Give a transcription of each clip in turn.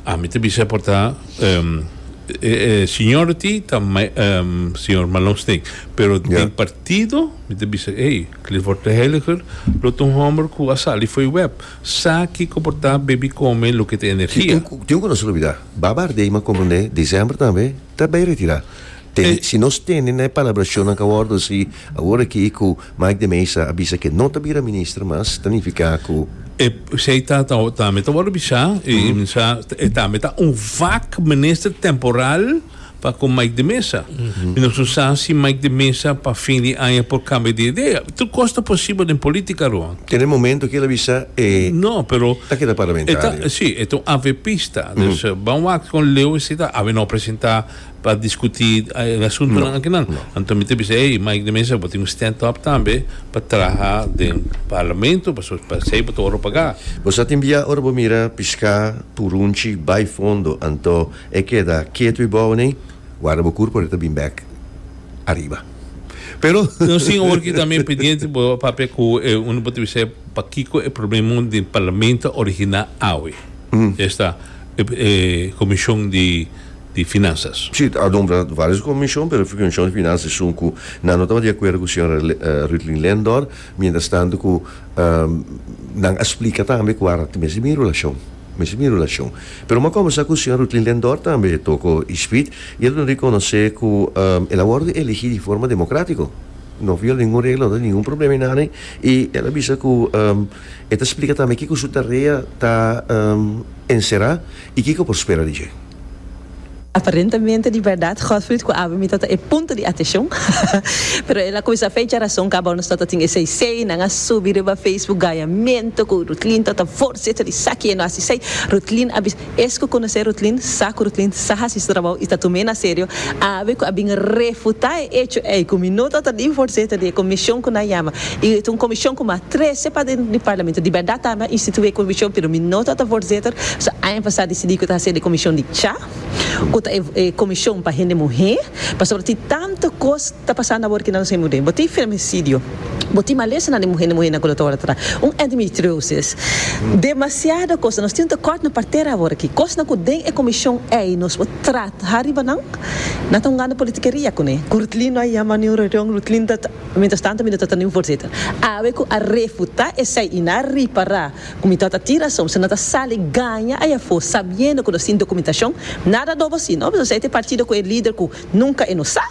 Ami ta bisa por ta e siñor di ta siñor Malonsteen pero den partido mi ta bisa ey Clifford de Heliger lo ta un homber cu a sali fo'i web sa kico por ta baby come loke ta energia. Tin un cosa lo bida Baba Aardema como ne December tambe ta bay retira. Tene, si nos tene na e palabrashonnan ka wòrdu así awor aki ku Mike de Meza a bisa ke no ta bira minister mas, ta nifiká ku. E P'esei ta ta tambe ta wòrdu bisá i bisá e tambe ta un vak minister temporal pa ku Mike de Meza. Mi no su sa si Mike de Meza pa fin di aña por kambia di idea. Tur kos ta posibel den polítika, Roa. Tene momento ki el a bisa e No, pero ta keda e ta parlamentario. sí e ta un avepista. Dus ban wak kon Leo si ta awe no presentá. pa discuti e asuntonan akinan. Anto mi ta bisa ey Mike de Meza bo tin un stand up tambe pa traha den Parlamento pasobra pa esey bo ta ora paga. Bo sa tin bia ora bo mira pisca purunchi bay fondo anto e keda ketu y bou nei guarda bo kur por e ta bin bek ariba pero. No sin awor ki tambe pendiente bo a papia cu e un di bo ta bisa ey pakico e problemon den Parlamento ta origina awe esta e comision di. di Finansas. Sí, a nombra varios comishon, pero Comishon di Finansa esun cu nan no taba di acuerdo cu Sra. Ruthlin Lendor, mientras tanto cu nan a splica tambe cu ara tin mes di mi relacion, mes di mi relacion. Pero bo a comensa cu Sra. Ruthlin Lendor tambe toco e speed y el a duna reconoce cu el a wordo eligi di forma democratico, no viola ningun regla, no ta ningun problema y nada y el a bisa cu E ta splika tambe kiko su tarea ta enserá i kiko por spera di dje. Aparentemente di bèrdat Gottfried ku Abby mi tabata e punto di ateshon, pero el a kuminsá fecha rason kaba nos tabata tin esei sei. Nan a subi riba Facebook gayamentu ku Ruthlin tabata vorsiet esaki e no hasi sei. Ruthlin a bisa. Es ku konosé Rutlin, sa ku Rutlin sa hasi su trabou i ta tum'é na serio, awe ku a bin refutá e echo ei ku mi no tabata ni voorzitter di e komishon ku nan yama i ta un komishon ku mi a trese pa dentro di parlamento. Di bèrdat ami a instituí e komishon pero mi no tabata voorzitter, so aña pasá a disidí ku ta hasi el e komishon di cha, ku ta e komishon pa hende muhé, pasobra tin tantu kos ta pasando awor ku nan los hende muhé. Bo tin femicidio. Bo tin malesanan di muhé, di muhénan ku lo ta wòrdu trata un endometriosis. Demasiado kos. Nos tin un tekòrt na partera awor aki. Kosnan ku den e komishon ei nos por traha riba nan, nan ta hungando politikeria kuné. Ku Ruthlin no a yama niun reunion, Ruthlin ta, mientras tanto mi no ta ta niun voorzitter. Awe ku a refutá esei i nan a ripará ku mi tabata tin rason, so nan ta sali gaña ei afó sabiendo ku nos tin dokumentashon. Nada dobo si, no? Bisao esei ta e partido ku e lider ku nunka e no sa.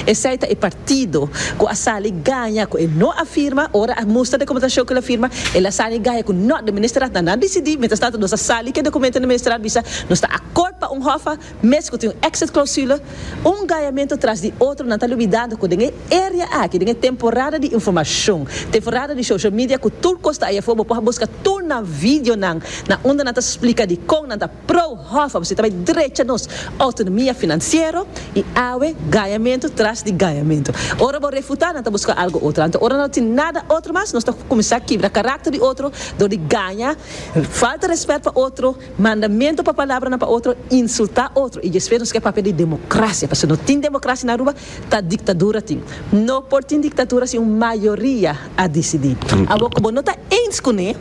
Esei ta e partido ku a sali gaña ku e no a firma, ora a mustra dokumentashon ku el a firma, el a sali gaña ku nòt den Ministerat nan a disidí, mientras tanto nos a sali ku e dokumentu den Ministerat bisa nos ta akort pa un hòf a mes ku tin un exit clausule, un gañamentu tras di otro nan ta lubidando ku den e area aki den e temporada di informashon, temporada di social media ku tur kos ta aya for bo por a buska tur nan videonan na unda nan ta splika dikon nan ta Pro hof a busita bay drecha nos autonomia financiero y awe gañamento tras di gañamento. Ora bo refuta nan ta busca algo otro. Anto ora nan no tin nada otro mas nos ta cuminsa kibra caracter di otro door di gaña, falta respet pa otro, mandamento pa palabranan pa otro, insulta otro y despues nos ke papia di democracia pasobra no tin democracia na Aruba ta dictadura tin. No por tin dictadura sin un mayoria a dicidi. Awor cu bo no ta eens cune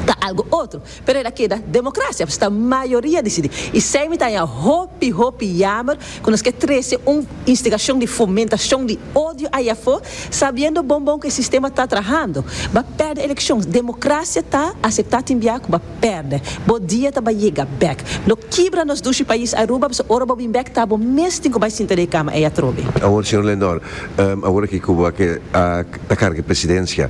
ta algo otro. Pero el a keda democracia, pues ta mayoria dicidi. Y esey mi ta haña hopi, hopi yamer cu nos ke trece un instigacion di fomentacion di odio ahi afo, sabiendo bon bon cu e sistema ta trahando. Ba perde eleccion. Democracia ta acepta tin bia cu ba perde. Bo dia ta bay yega bek. Lo kibra nos dushi pais Aruba, pues ora bo bin bek ta bo mes tin cu bay sinta den e cama ey atrobe. Awor, señor Lendor, awor aki cu bo a ta carga e presidencia,